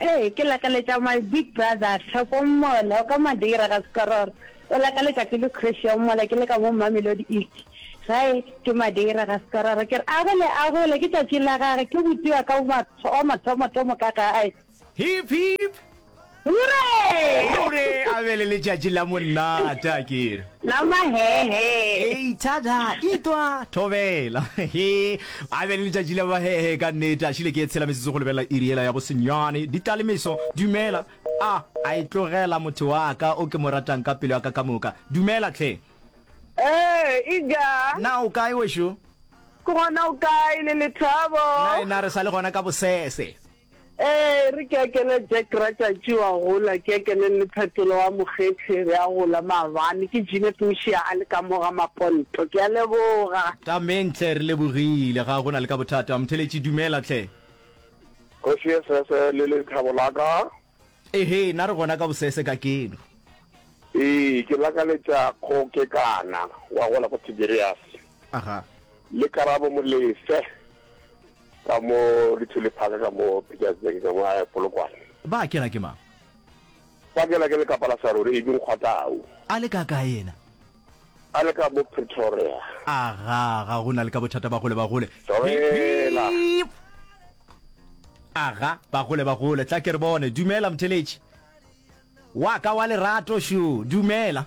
Ee, ke lakaletša my big brother Theko Mola, o ka Madeira ga Sekororo. O lakaletša ke le Christian Mola, ke le ka mo Mamelodi East. Gae ke Madeira ga Sekororo. Ke re a gole, a gole, ke tšatši la gage, ke botiwa ka wa mathomo-thomo ka gae. Hip, hip! Hurre! Hurre! A be le letšatši la monnata, ke re. Nama hee hee. Hei thada itwa thobela he a be le letšatši la bahehe ka nnete a šile ke etshela metsotso go lebelela iri yela ya bo senyane di tla le meso dumela a a e tlogela motho wa ka o ke mo ratang ka pelo ya ka ka moka dumela tlhe Ee e ja. na o kae wešo Ke gona o kae le lethabo. na e na re sa le gona ka bosese Ee, e re ke a kene Jack Ratšatši wa gola, ke a kene le Phetolo wa Mokgethi re a gola maabane, ke Jeanette Mošia a le ka mo ga maponto. Ke a leboga. Amen tlhe, re lebogile. Ga go na le ka bothata. Motheletši, dumela tlhe. Kgoši ye sese le lethabo la ka. Ehe, na re gona ka bosese ka keno. Ee, ke lakaletša kgokekana wa gola ko Tiberiase. Aha. Le Karabo Molefe, Ka mo Lithuli Park, ka mo Pietersburg, ka mo a Polokwane. Ba kela ke mang? Ba kela ke lekapa la saruri, e bing kgwatau. A le ka kae yena? A le ka mo Pretoria. Aga, ga go na le ka bothata ba gole ba gole. Dumela. Beep! Aga, ba gole ba gole, tla ke re bone. Dumela, Mtheletši. Wa ka wa lerato, šo. Dumela.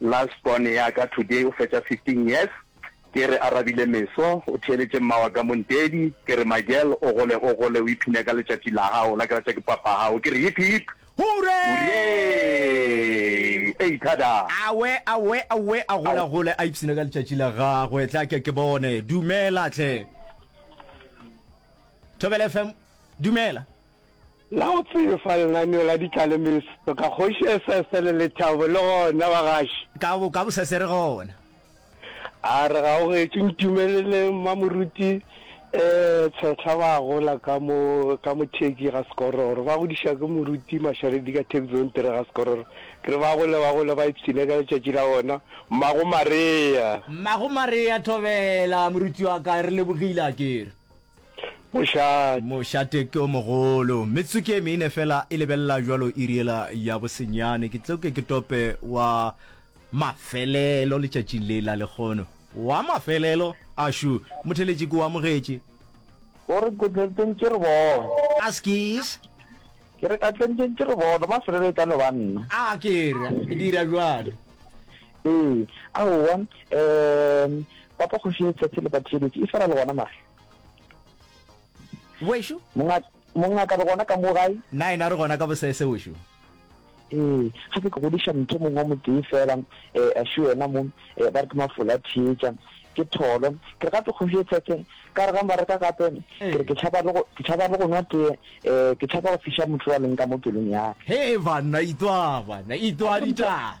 Last born ya ka today o fetša 15 years Ke re a rabile meso o theeletše mma wa ka Montedi Ke re my girl o gole o gole o iphine ka letšatši la gago la ke ratša ke papa gago Ke re hip hip Hooray Ei thada! Awe awe awe a gole a gole a ipsine ka letšatši la gagwe Tle a ke ke bone Dumela tle Thobela FM Dumela. La o tsebe fa lenaneo la ditlalemeso ka Kgoši Esese le Lethabo le gona bagaši? Ka bo, ka bosese re gona. A re ga o getše, ntumelele Mmamoruti eh, Tshehla ba gola ka mo, ka mo Turkey ga Sekororo. Ba godiša ke Moruti Masharedi ka Thabizontere ga Sekororo. Ke re ba gole, ba gole ba ipshine ka letšatši la bona. Mmago Marea. Mmago Marea Thobela, moruti wa ka, re lebogile akere. Mošate. Mošate ke o mogolo. Metsotso ke e mene fela e lebelela jwalo iri ela ya bosenyane. Ke tlo ke ke tope wa mafelelo letšatšing le la lekgono. Wa mafelelo? Ashu, motheletši ke o amogetše. O re ka tlentšeng ke re bone. Askies? Ke re ka tlentšeng ke re bone, mafelelo e tla no ba nna. A ke re, dira jwalo. Ee, aowa, um, Papa Kgoši ye tsatsi le batiyeletše e swara le gona mare. Wešo? Mongaka, mongaka re gona ka mo gae? Na ena re gona ka bosese wešo? Ee, ga ke ke godiša mtho mongwe wa motse e fela, eh, a šo yena mo, eh, ba re ke mafola theetša ke tholo ke re gape kgoši e tshetse ka re ga mba reka gape ke re ke tšhaba le go ke tšhaba le go nwa tee eh ke tšhaba go fiša motho wa leng ka mo pelong ya he e banna itwa bana itwa ditaba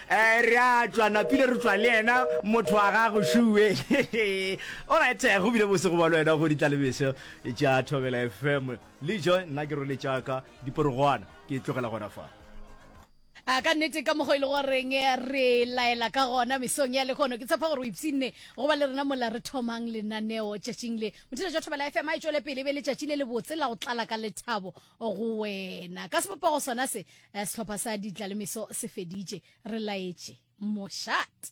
Ee, re a tšwa, napile re tšwa le yena, motho wa gago, Shue. Alright, go bile bose go ba le wena go ditlalebeso tša Thobela FM. Lijo, nna ke rwele tša ka diporogwana, ke tlogela gona fa. A ka nnete ka mokgwa e le goreng re laela ka gona mesong ya lekgono ke tshepa gore o ipsinne go ba le rena mola re thomang lenaneo tšatšing le motšhelo jwa thobela fm a e tšwele pele e be letšatši le lebotse la go tlala ka lethabo go wena ka sebopego sona se eh, sehlopha sa ditlalemeso se feditše re laetše moshat